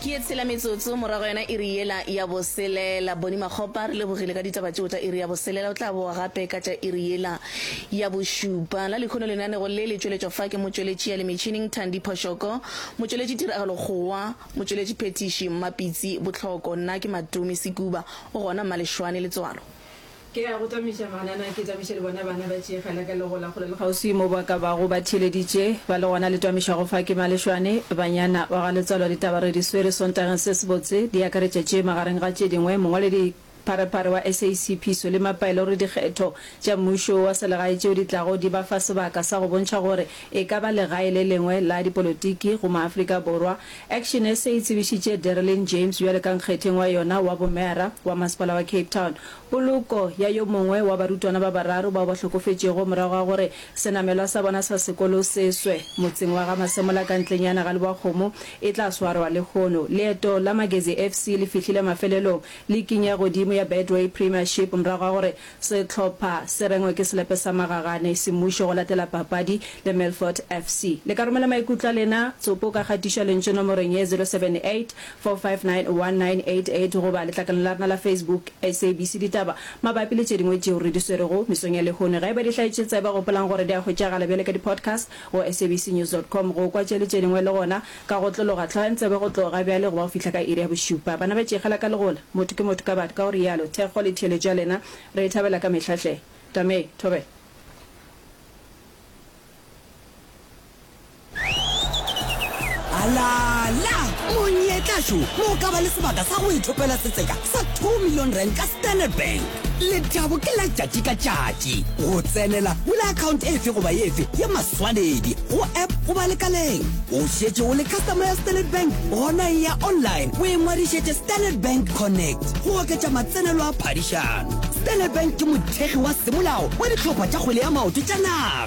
ke e tshela metsotso morago yona e re yela ya boselela boni makgopa re lebogile ka ditaba tseo tša e re ya boselela o tla boa gape ka tša e re yela ya bošupa la lekhono lenanego le le tšweletšwa fa ke motšweletši ya le metšhining thandi phošoko motšweletši tiragalo kgowa motšweletši phethiši mmapitsi bohloko nna ke matumi sekuba o gona mmalešwane letswalo Ke ya go tamiša banana, ke tamiše le bona bana ba tšee kgala ka lego la kgole le kgauswi mo ba ka bago ba theeleditše, ba le gona le twamišago fa ke Malešwane. Banyana ba ga Letswalo ditaba re di swere Sontageng se sebotse, di akaretša tše magareng ga tše dingwe, mongwaledi pharephare wa SA Seiphiso le mapaelo re dikgetho tša mmušo wa selegae tšeo di tlago di ba fa sebaka sa go bontšha gore e ka ba legae le lengwe la dipolotiki go Maafrika Borwa. Action SA e tsebišitše Derelyn James bjalo ka nkgetheng wa yona wa bomeyara wa masepala wa Cape Town. Poloko ya yo mongwe wa barutwana ba bararo bao ba hlokofetšego morago ga gore senamelwa sa bona sa sekolo se swe motseng wa ga Masemola ka ntlenyana ga Lebowakgomo e tla swarwa lehono. Leeto la Magezi FC le fihlile mafelelong liking ya godimo ya Betway Premiership morago ga gore sehlopha se rengwe ke selepe sa magagane semmušo go latela papadi le Milford FC. Le ka romela maikutlo a lena, tsopo ka kgatišo ya lentšu nomorong ye 078 4591988 goba letlakaleng la rena la Facebook SABC Ditaba mabapi le tše dingwe tšeo re di swerego mesong ya lehono. Ge e ba di hlaetše tsebe, gopolang gore di a hwetšagala bjale ka di-podcast go sabcnews dot com. Go kwa tše le tše dingwe le gona ka go otlologa, tlogeng tsebe go tloga bjale go ba go fihla ka iri ya bošupa. Bana ba tšikgela ka legola, motho ke motho ka batho, ka o realo. Thekgo le theeletšo ya lena re e thabela ka mehla hle. Tame. Thobela. Alala! Monyetla jo mo o ka ba le sebaka sa go ithopela setseka sa 2 million rand ka Standard Bank. Lethabo ke la tšatši ka tšatši. Go tsenela, bula account efe goba efe ya maswanedi, go app goba lekaleng. O šetše o le customer ya Standard Bank? Gona eya online o ingwadišetše Standard Bank Connect go oketša matsenelo a phadišano. Standard Bank ke mothekgi wa semolao wa dihlopha tša kgwele ya maoto tša naga.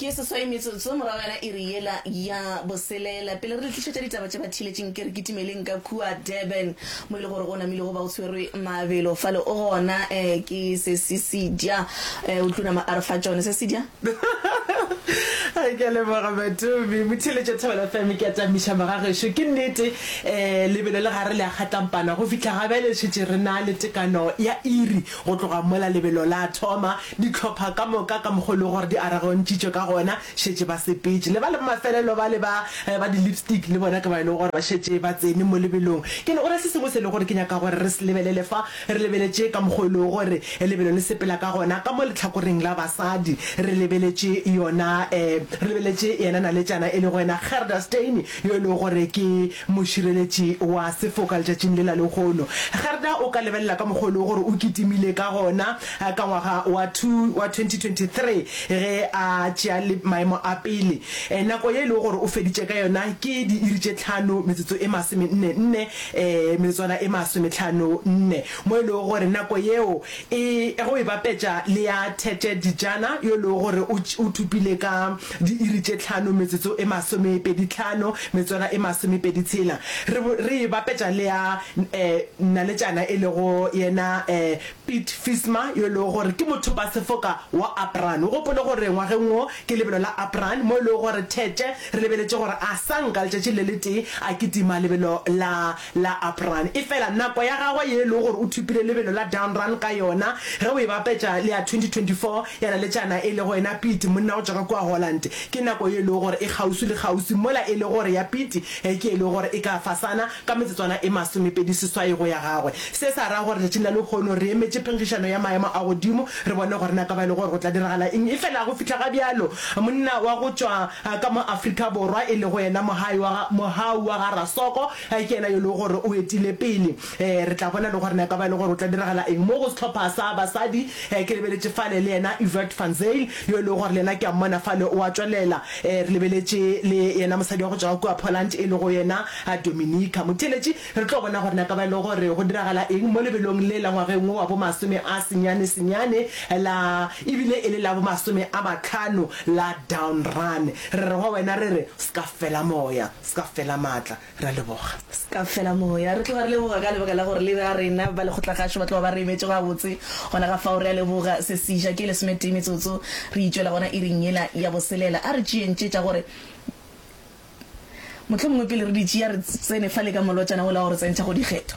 ke seswai metsotso morago yana e re yela ya boselela pele re le tlišetša ditaba tše ba thiletšeng ke re kitimeleng ka kua durban mo e le gore go namilego ba o tshwerwe mabelo fale o gona um ke sesisidya um eh, o tlunama a re fa tsone sesidya ke leboga matomi motheletša thobela fm ke atamiša magagešo ke nnete um lebelo le gare le a kgatlampana go fitlha ga bjale šetse re na le tekano ya iri Go tloga mola lebelo la thoma, dihlopha ka moka ka mokgwa o lego gore di aragontšitšwe ka gona, šetše ba sepetše. Le ba le mafelelo bale ba, ba di-lipstick, le bona ke bao e lego gore ba šetše ba tsene mo lebelong. Ke ne, go na le se sengwe se e lego gore ke nyaka gore re se lebelele fa. Re lebeletše ka mokgwa o e lego gore lebelo le sepela ka gona ka mo lehlakoreng la basadi. Re lebeletše yona, re lebeletše yena naletšana e lego yena Gerda Steini, yo e lego gore ke, Mošireletši wa sefoka letšatšing lela lehono. Gerda o ka lebelela ka mokgwa o lego gore o kitimile ka gona ka ngwaga wa wa 2023 ge a tšea le maemo a pele. Nako ye e lego gore o feditše ka yona ke diiri tše tlhano metsotso e masomenne nne, metsotsoana e masometlhano nne, mo e lego gore nako yeo e go e bapetša le ya Tete Dijana yo e lego gore o o thopile ka diiri tše tlhano metsotso e masomepedi tlhano metsotwana e masomepedi tshela, re bo re e bapetša le ya um Nnaletšana e lego yena um Piet Visma yo e lego gore ke mothopasefoka wa Apraan. O gopole gore ngwageng wo ke lebelo la Apraan mo e lego gore Tete re lebeletše gore a sa nka letšatši le letee a kitima lebelo la la Up'run. Efela nako ya gagwe ye e lego gore o thupile lebelo la Down'run ka yona ge o e bapetša le ya 2024 ya naletšana e lego yena Piet, monna go tšwa ka kua Holland, ke nako ye e lego gore e kgauswi le kgauswi mola e le gore ya Piet ke e lego gore e ka fasana ka metsotswana e masomepedi seswai go ya gagwe. Se sa ra gore tšatšing la lehono re emetše phenkgišano ya maemo a godimo re bone gore na ka ba e le gore go tla diragala eng. Efela go fihla ga bjalo monna wa go tšwa. ka mo Afrika Borwa, e lego yena mohai wa ga, mohau wa ga Rasoko, ke yena yo e lego gore o etile pele. Re tla bona le gore na e ka ba e le gore go tla diragala eng mo go sehlopha sa basadi. Ke lebeletše fale le yena Evert van Zyl, yo e lego gore le yena ke a mmona fale o a tšwelela. Re lebeletše le yena mosadi wa go tšwa kua Poland, e lego yena Dominika. Motheeletši, Re tlo bona gore na ka ba e le gore go diragala eng mo lebelong le la ngwageng wo wa bomasome a senyane-senyane la, e bile e le la bomasome a matlhano la Down Run. Re re go wena, re re, S'ka fela moya, s'ka fela maatla. Re a leboga. S'ka fela moya. Re tloga re leboga ka lebaka la gore le ba rena ba lekgotla-kgašo ba tloga ba re emetše gabotse gona ka fao. Re a leboga. Se se ja ke lesometee metsotso. Re itšwela gona iring yela ya boselela. A re tšeeng tše tša gore. Mohlomongwe pele re di tšea, re tsene fale ka molotšana wola wa go re tsentšha go dikgetho.